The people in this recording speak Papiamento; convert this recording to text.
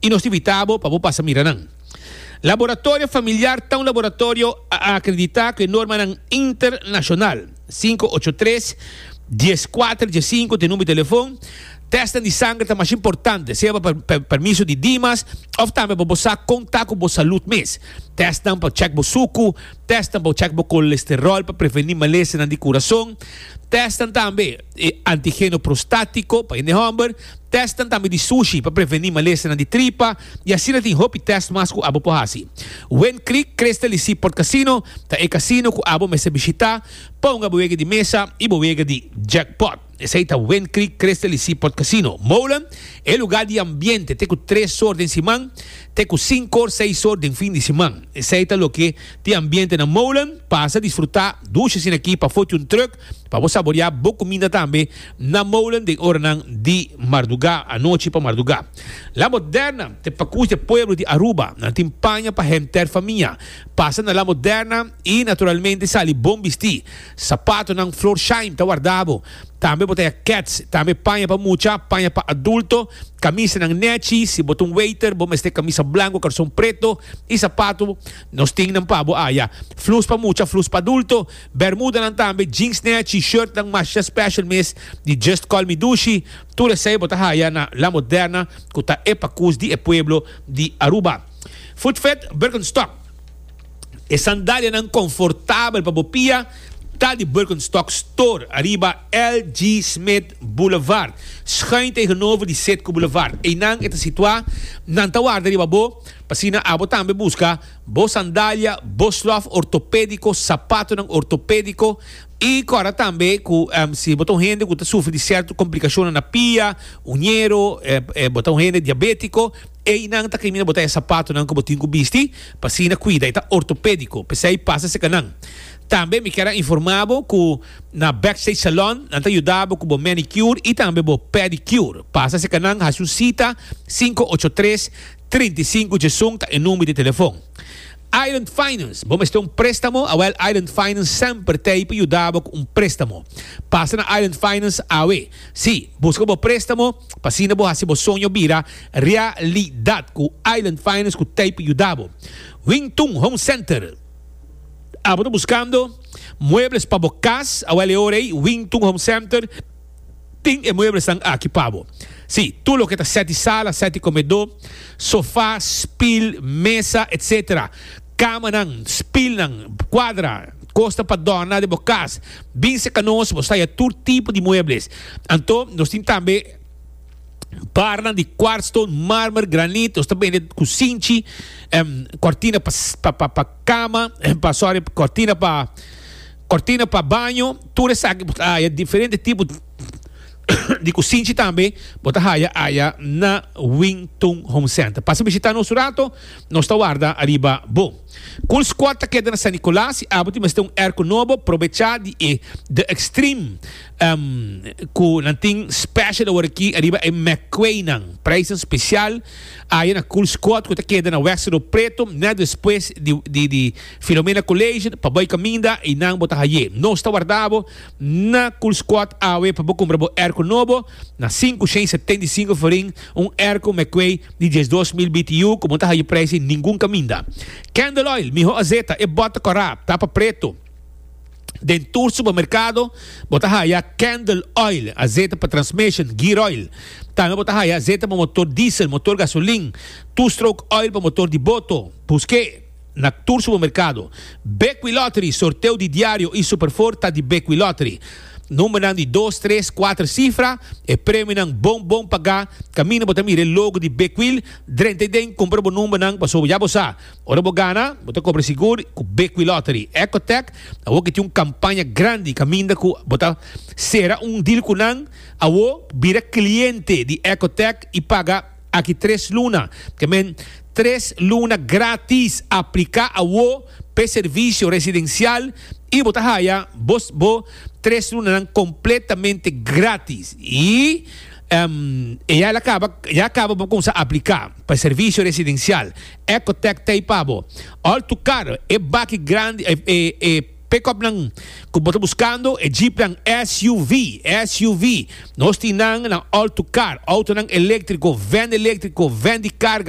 y nos ta invita bo pa bo pasa mira nan. Laboratorio familiar ta un laboratorio acredita cu e normanan internacional, sinku ocho tres, dies kuater, dies sinku te number di telefon. Testnan di sanger ta mas importante, sea pa per, permiso di dimas of tambe pa bo sa con ta cu bo salud mes. Testnan pa check bo suku, testnan pa check bo colesterol pa preveni malesanan di curason, testnan tambe. e antigeno prostátiko pa hende hòmber, tèstnan tambe di sushi pa prevení malestarnan di tripa, i asina tin hopi tèst mas ku abo por hasi. Wind Creek Crystal i Seaport Casino ta e kasino ku abo mester bishitá pa hunga bo wega di mesa i bo wega di jackpot. Esei ta Wind Creek Crystal i Seaport Casino, Molen, e lugá di ambiente te ku tres or den siman te ku sinku or, seis or, den fin di siman. Esei ta loke di ambiente na Molen. Pasa disfrutá dushi asina aki pafó di un truk Pa bo saboreá bo kuminda tambe na molen den oranan di mardugá, anochi pa mardugá. La Moderna, te pakus di e pueblo di Aruba, nan tin paña pa henter famia, pasa na La Moderna i naturalmente sali bon bistí. Sapatonan Florsheim ta warda bo. Tambe bo ta ya Keds, tambe paña pa mucha, paña pa adulto, kamisanan nechi, si bo ta un weiter bo mester kamisa blanko karson preto i sapato. Nos tin nan pa bo aya, flus pa mucha, flus pa adulto. Bermudanan tambe, jeansnan, T-shirtnan masha special mes di Just Call Me Dushi, tur esei bo ta haya na La Moderna cu ta e pacus di e pueblo di Aruba. Footfed Birkenstock, E sandalianan confortabel pa bo pia ta di Birkenstock Store ariba LG Smith Boulevard, schuin tegenover di Citgo Boulevard. Einan e ta situa, nan ta warda riba bo, p'asina abo tambe busca. bo sandalia, bo slof ortopédiko, sapatonan ortopédiko, i kòrda tambe ku si bo ta un hende ku ta sufri di sèrto komplikashonnan na pia, uñero, bo ta un hende diabétiko, einan ta kaminda bo ta e sapatonan ku bo tin ku bisti pa asina kuida, e ta ortopédiko, p'esei pasa serka nan. Tambe mi kier a informá bo ku na Backstage Salon nan ta yuda bo ku bo manicure i tambe bo pedicure. Pasa serka nan, hasi un sita, sinku ocho tres. Trinta i sinku djesun ta e number di telefon. Island Finance, Bo mester un prestamo? Awel Island Finance semper ta ei pa yuda bo cu un prestamo. Pasa na Island Finance awe. Si, busca bo prestamo pa asina bo haci bo soño bira realidad cu Island Finance cu ta ei pa yuda bo. Wing Tun Home Center, Abo ta buscando muebles pa bo cas? Awel e ora ei, Wing Tun Home Center. Tin e mueblesnan aki pa bo. Sí, tur loke ta sèt di sala, sèt di komedó, sofá, spil, mesa, etc. Kamanan, spilnan, kuadra, kosnan pa dòrna den bo kas. Bin serka nos, bo staya tur tipo di muebles. Anto nos tin tambe barnan di kwartston, mármer, granit. Nos ta bende ku sinchi, kòrtina pa kama, sòri, kòrtina pa. Cortina pa baño, tur esaki bo ta haya diferente tipo di kusinchi tambe bo ta haya aya na Wing Tung Home Center. Pasa bishita nos un rato, nos ta warda ariba bo. Cool Squad ta keda na San Nicolas i abo tin mester un airco nobo, probecha di e The Extreme cu nan tin special awor aki ariba e McQuay nan. Prijzen special aya na Cool Squad cu ta keda na West Rio Preto, net despues di Filomena College pa bai caminda y nan bo ta haye. Nos ta warda bo na Cool Squad awe pa bo cumpra bo airco nobo na sinku shen setenta i sinku forin, un airco McQuay di diesdos mil BTU cu bo no ta haye prijs di ningun caminda. Candle Oil, miho azeta, e bota cora, tapa preto. Den tur supermercado bo ta haya Candle Oil, azeta pa transmission, gear oil. Tambe bo ta haya azeta pa motor diesel, motor gasolin, two-stroke oil pa motor di boto. Busque. Na tur supermerkado. Bekwin Lottery, sorteo di diario i Superfor ta di Bekwin Lottery. Numbernan di dos, tres, kuater sifra, e premionan bon bon pagá, kaminda bo ta mira e logo di Bekwin drenta i den, kumpra bo numbernan pasobra ya bo sa ora bo gana bo ta kobra sigur ku Bekwin Lottery. Ecotech, Awo ke tin un kampaña grandi kaminda ku bo ta sera un deal ku nan, awo bira kliente di Ecotech i paga. Aki tres luna, ke men, tres luna gratis apliká awo p'e servisio residensial i bo ta haya bo bo tres lunanan kompletamente gratis. I ehm e ya el a kaba ya kaba bo kumsa apliká p'e servisio residensial. Ecotech t'ei pa bo. Òl tukar e baki grandi e e e. Pickup nan cu bo ta buscando e jeepnan SUV, SUV. Nos tin nan, nan alto car, autonan electrico, van electrico, van di carga,